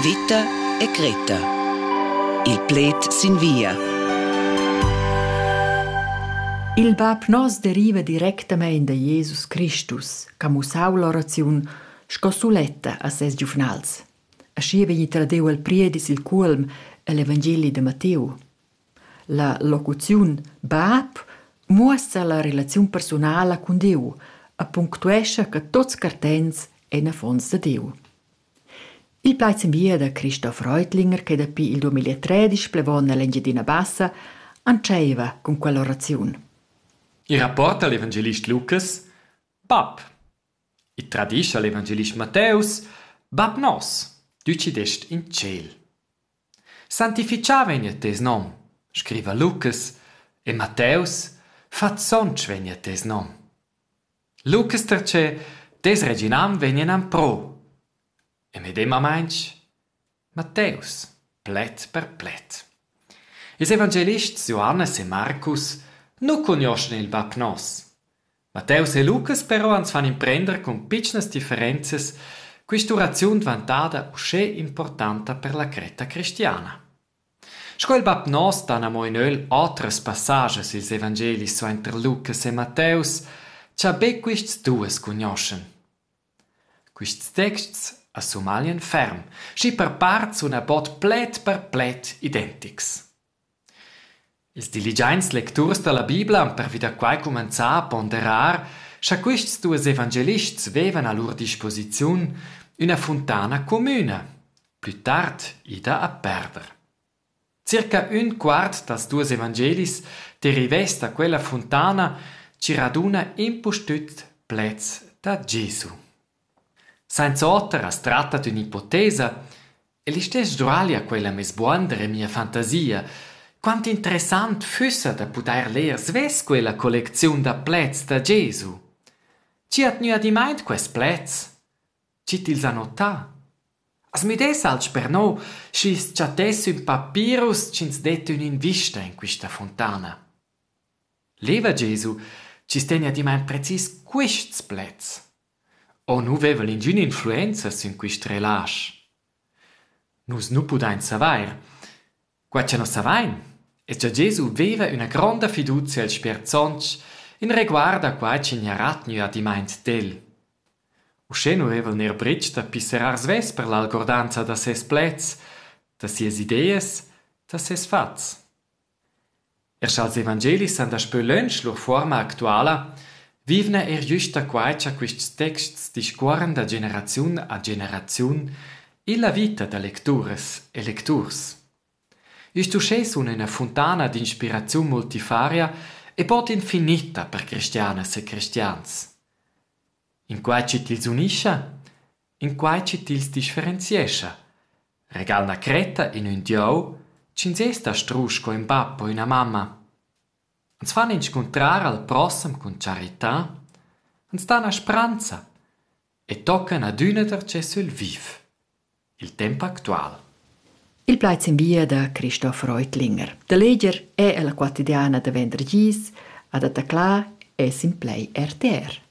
Vita e Greta. Il pled sin via. Il bab nos deriva directamein da Jesus Christus, che ha mussau l'oraziun sco suletta a ses giuvnals. Aschi vegni tradeu al priedis il cuolm el Evangeli de Matteo. La locuziun bab muossa la relaziun personala cun Deu e punctuescha che tots cartents ein affons de Deu. Il plaz bia da Christoph Reutlinger che dapi il 2013 plevon nell'Engiadina Bassa antscheiva cun quell'oraziun. Il rapport da l'evangelist Lukas Bab. Il tradischa l'evangelist Matteus Bab nos, ducidest in ciel. Santificava vegnia tes nom, scriva Lukas, e Matteus, fat sontg vegnia tes nom. Lucas pertgei tes reginan vegn en empro. E medemamain Matteus, pled per pled. Ils evangelists Johannes e Marcus nu cugnoschan il bab nos. Matteus e Lucas però ans fan imprender cun pitschnas differenzas quist'uraziun dvantada uschè importanta per la cretta cristiana. Sco il bab noster han amo in ögl otras passagias i'ls evangelis suainter Lukas e Matteus, cha be quists duos cugnoschan. Quists texts as sumaglian ferm, schi per part suna bod pled per pled identics. Ils diligiaints lecturs da la Bibla han pervi da quai cumenzà a ponderar scha quists duos evangelists vevan a lur disposiziun üna funtana comüna, plü tard ida a perder. Circa ün quart dals duos evangelis derivess da quella funtana chi raduna impustüt pleds da Gesu. Sainz'oter as tratta d'ün ipotesa e listess Giuali ha quella mez buonder in mia fantasia. Quant interessant füssa da pudair ler svess quella collecziun da pleds da Gesu. Chi ha tgnü adimaint quaists pleds? Chi tils ha notà? As müdess alch per no, schi's chattess ün papirus chi'ns det ün'invista in quista fontana. Leva Gesu, chi's tegna adimaint precis quists pleds. O nu vevan ingün influenza sün quist relasch? Nus nu pudain savair. Quai cha nus savain es cha Gesu veva üna gronda fiduzia als sperdsonts in reguard a quai chi gnarà tgnü adimmaint d'el. Uschè nu veva el neir bret da pisserar svess per l'algordanza da seis pleds, da sias ideas, da seis fats. Er scha'ls evangelis san daspö lönch lur fuorma actuala, vivna eir güsta quai cha quists texts discuorran da generaziun a generaziun illa vita da lecturas e lecturs. Üst uschè sun üna funtana d'inspiraziun multifaria e bod infinita per cristianas e cristians. In quai chi tils unischa in quai chi tils differenziescha. Regal 'na cretta in ün dieu, ch'ins es da strusch co ün bap o üna mamma. Ans fan inscuntrar al prossem cun charità, ans dan a spranza e toccan adüna darcheu sül viv. Il temp actual. Il plaid sin via da Christoph Reutlinger. Da leger è la quotidiana da vendergis ad attaclar es in play RTR.